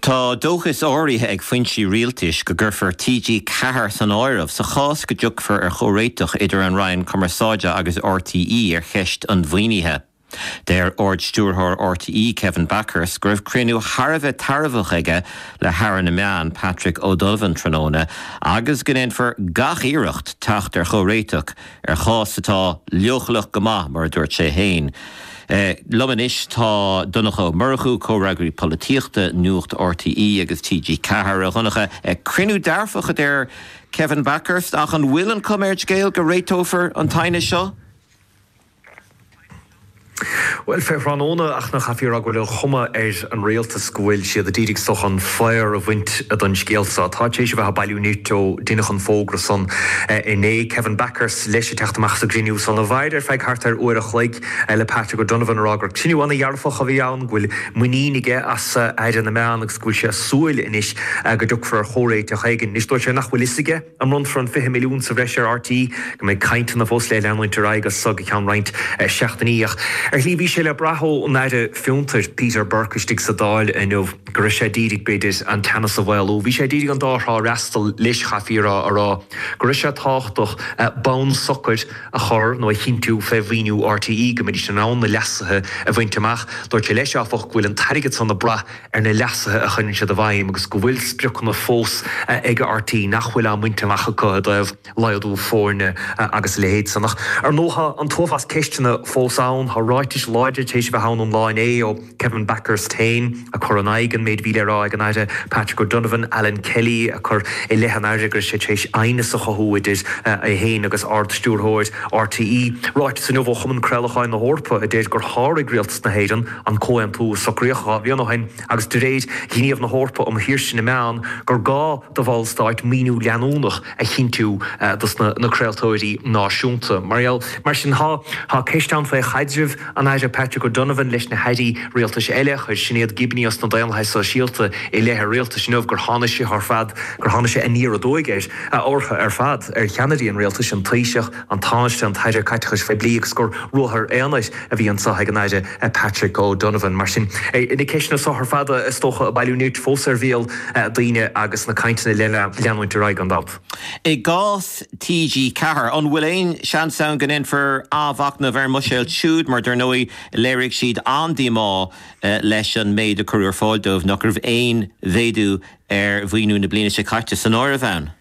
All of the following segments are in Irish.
Tá dóchas áirithe ag foinsí rialtais go gcuirfear TG4 san áireamh sa chás go dtiocfar ar chomhréiteach idir an Roinn Cumarsáide agus RTÉ ar cheist an mhaoinithe. Deir Ard-Stiúrthóir RTÉ, Kevin Bakhurst, go raibh cruinniú thar a bheith tairbheach aige le hAire na Meán, Patrick O'Donovan, tráthnóna agus go ndéanfar gach iarracht teacht ar chomhréiteach ar chás atá leochaileach go maith, mar a dúirt sé féin. Liom anois tá Donncha Ó Murchú, Comhfhreagraí Polaitíochta Nuacht RTÉ agus TG4. A Dhonncha, cruinniú dearfach a deir Kevin Bakhurst, ach an bhfuil an chuma ar an scéal go réiteofar an t-aighneas seo? Bhuel, fé thráthnóna ach ná caithfí a rá go bhfuil an chuma ar an Rialtas go bhfuil siad a d'iarraidh an faobhar a bhaint den scéal so. Táid tar éis a bheith ag bailiú nirt ó deineadh an fógra san inné. Kevin Bakhurst, leis, ag teacht amach as an gcruinniú san a mhair ar feadh thart ar uair a chloig. le Patrick O'Donovan a rá gur cruinniú ana-dhearfach a bhí ann, go bhfuil muinín aige as Aire na Meán agus go bhfuil sé ag súil anois go dtiocfar ar chomhréiteach éigin. Anois dúirt sé nach bhfuil fhios aige an mbronnfar an 20 milliún sa bhreis ar RTÉ, go mbeidh cainteanna fós le leanúint ar aghaidh as so go ceann roinnt seachtainí ach ar shlí bhí sé le brath ón Aire Fiontair, Peter Burke istigh sa Dáil inniu go raibh sé a d'iarraidh b'fhéidir an teannas a mhaolú. Bhí sé a d'iarraidh an dá thrá a fhreastal leis caithfí a rá, a rá go raibh sé tábhachtach bonn socair, a chur nó a chinntiú fé mhaoiniú RTÉ go mbeidís in ann na leasuithe a bhaint amach. Dúirt sé leis, áfach, go bhfuil an t-airgead san ag brath ar na leasuithe a chuireann siad i bhfeidhm agus go bhfuil spriocanna fós ag RTÉ nach bhfuil á mbaint amach acu i dtaobh laghdú foirne agus a leithéid san. Ar ndóigh, tá an t-uafás ceisteanna fós ann. Tá ráitis láidre tar éis a bheith ann an lá inné ó. Kevin Bakhurst féin a chur in aghaidh an méid a bhí le rá ag an Aire Patrick O'Donovan, Alan Kelly a chur i leith an Aire go raibh sé tar éis aighneas a chothú idir é féin agus Ard-Stiúrthóir RTÉ. Ráiteas inniu ó Chumann Craolacháin na hEorpa a deir gur sháraigh Rialtas na hÉireann an comhaontú a socraíodh dhá bhliain ó shin agus de réir ghníomh na hEorpa um shaoirse na meán gur gá do bhallstáit maoiniú leanúnach a chinntiú dos na craoltóirí náisiúnta. Bhuel, mar sin, tá ceist ann faoi chaidreamh an Aire Patrick O'Donovan leis na hAirí Rialtais eile. Chuir Sinéad Gibney as na Daonlathaithe Sóisialta i leith an Rialtais inniu gur tháinig sé ar fad, gur tháinig sé aniar aduaidh air, ortha ar fad, ar cheannairí an Rialtais, an Taoiseach, an Tánaiste, an tAire Caiteachais Phoiblí agus gur ruathar aonair a bhí anseo ag an Aire Patrick O Donovan. Mar sin, na ceisteanna so ar fad is dócha a bailiú nirt fós ar bhéal daoine agus na cainteanna le leanúint ar aghaidh gan dabht. I gcás TG4, an bhfuil aon seans ann go ndéanfar athmhachnamh ar an mbuiséal siúd mar dar ndóigh léirigh siad an-díomá leis an méid a cuireadh ar fáil dóibh, nach raibh aon mhéadú ar mhaoiniú na bliana seo caite san áireamh ann.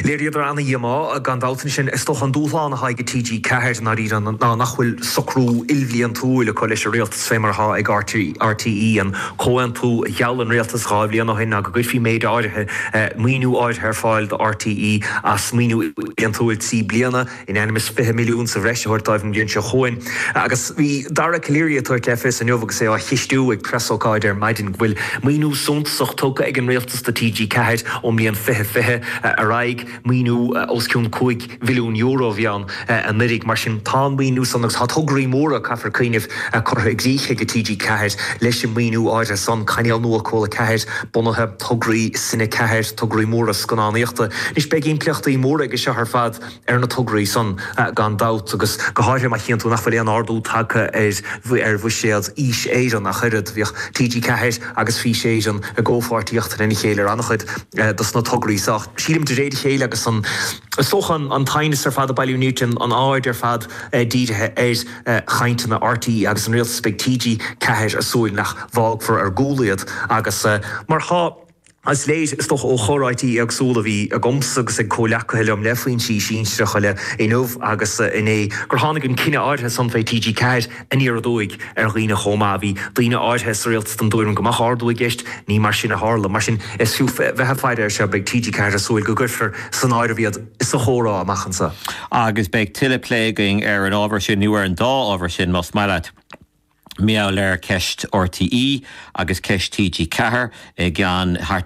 Léiríodar ana-dhíomá, gan dabht, ansin, is dócha, an dúshlán atá ag TG4, i ndáiríre, ná nach bhfuil socrú ilbhliantúil acu leis an Rialtas, fé mar atá ag RTÉ, an comhaontú a gheall an Rialtas dhá bhliain ó shin ná go gcuirfí méid áirithe, maoiniú áirithe ar fáil do RTÉ as maoiniú bliantúil trí bliana. in ainm is fiche milliún sa bhreis a thabhairt dóibh an bhliain seo chugainn agus bhí Dara Calleary ag tabhairt le fios inniu agus é á cheistiú ag preasócáid ar maidin go bhfuil maoiniú suntasach tugtha ag an Rialtas do TG4 ón mbliain fiche fiche ar aghaidh, maoiniú os cionn cúig mhilliún euro a bhí ann anuiridh, mar sin tá an maoiniú san agus tá tograí móra, caithfear cuimhneamh, curtha i gcrích ag TG4 leis an maoiniú áirithe san, cainéal nua Cúla 4 bunaithe, tograí Cine 4, tograí móra scannánaíochta. Anois beidh impleachtaí móra aige seo ar fad. ar na tograí san gan dabht agus go háirithe má chíonn tú nach bhfuil aon ardú tagtha ar bhuiséad Fhís Éireann ach oiread. Bhíodh TG4 agus Fís Éireann i gcomhpháirtíocht lena chéile ar an-chuid dos na tograí seo ach sílim de réir a chéile agus is dócha an t-aighneas ar fad ag bailiú nirt tá an aird ar fad dírithe ar chainteanna RTÉ agus an Rialtas beidh TG4 ag súil nach bhfágfar ar gcúl iad agus mar tá. Is léir, is dócha, ó chomhráití éagsúla a bhí agamsa agus ag comhleacaithe liom le foinsí sinsearacha eile inniu agus inné gur tháinig an cinneadh áirithe san fé TG4 aniar aduaidh ar dhaoine chomh maith. Bhí daoine áirithe sa Rialtas den dtuairim go mbeadh ardú i gceist. Ní mar sin a tharla. Mar sin, is fiú bheith ag faire air seo. Beidh TG4 ag súil go gcuirfear san áireamh iad sa chomhrá amach anseo. Agus beidh tuilleadh plé againn ar an ábhar sin nó ar an dá ábhar sin más maith leat. maidir le ceist RTÉ agus ceist TG4 i gceann thart